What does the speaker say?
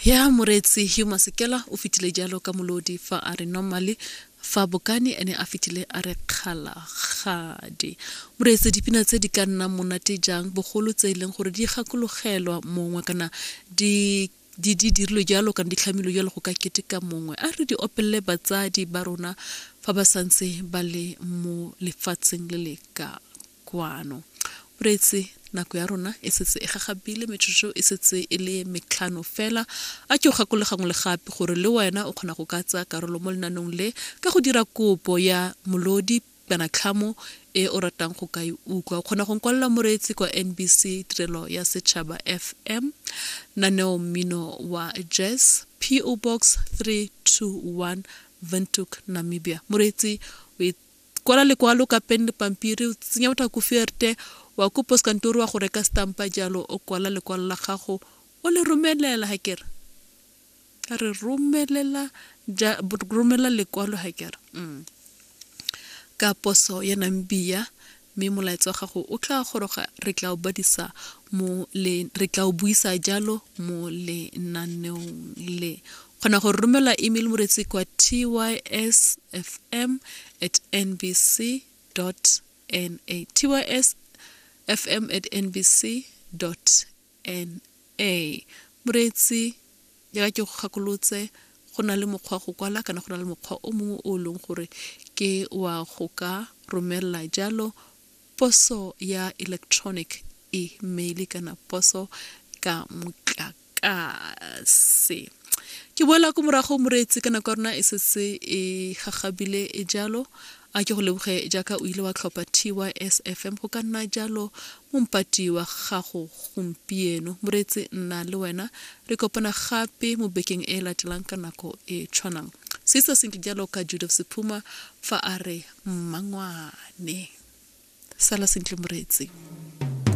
ya moreetsi hugh masekela o fetile jalo ka molodi fa a re normally fa bokane ene a fetile a re kgalagadi moreetse dipina tse di ka nnang monate jang bogolo tse e leng gore di gakologelwa mongwe kana di di di dirilwe jalo kana di tlhamilwe jalo go ka keteka mongwe a re di opelele batsadi ba rona fa ba santse ba le mo lefatsheng le le ka kwano. O reetse, Nako ya rona e setse e gagabile, metsotso e setse e le metlhano fela. A ke o gakole gangwe le gape gore le wena o kgona go ka tsaya karolo mo lenanong le ka go dira kopo ya molodi kana tlhamo e o ratang go ka e utlwa. O kgona go nkwalela moreetsi kwa NBC Tirelo ya Setšhaba FM, Naneo Mmino wa Jazz, PO Box 321 Windhoek, Namibia. Moreetsi o Kwala lekwalo ka pen le pampiri, o tsenya botha ko fierte, wa ko poskantori wa go reka stampa jalo o kwala lekwalo la gago o le romelela ha kere. A re romelela ja romelela lekwalo ha kere. Mm. Ka poso ya Namibia mme molaetsa wa gago o tla goroga re tla o badisa mo le re tla o buisa jalo mo lenaneong le kgona go romela email moretsi kwa tysfm at nbc na tysfm at nbc na moretsi jaaka ke go gakolotse go na le mokgwa go kwala kana go na le mokgwa o mongwe o e leng gore ke wa go ka romelela jalo poso ya electronic email kana poso ka motlaka tlase ke boela ko morago moreetsi ka nako ya rona e setse e gagabile e jalo a ke go leboge jaaka o ile wa tlhopha tys fm go ka nna jalo mompati wa gago gompieno moreetsi nna le wena re kopana gape mo bekeng e latelang ka nako e tshwanang se se senke jalo ka judith sephuma fa a re mmangwane sala sentle moreetsi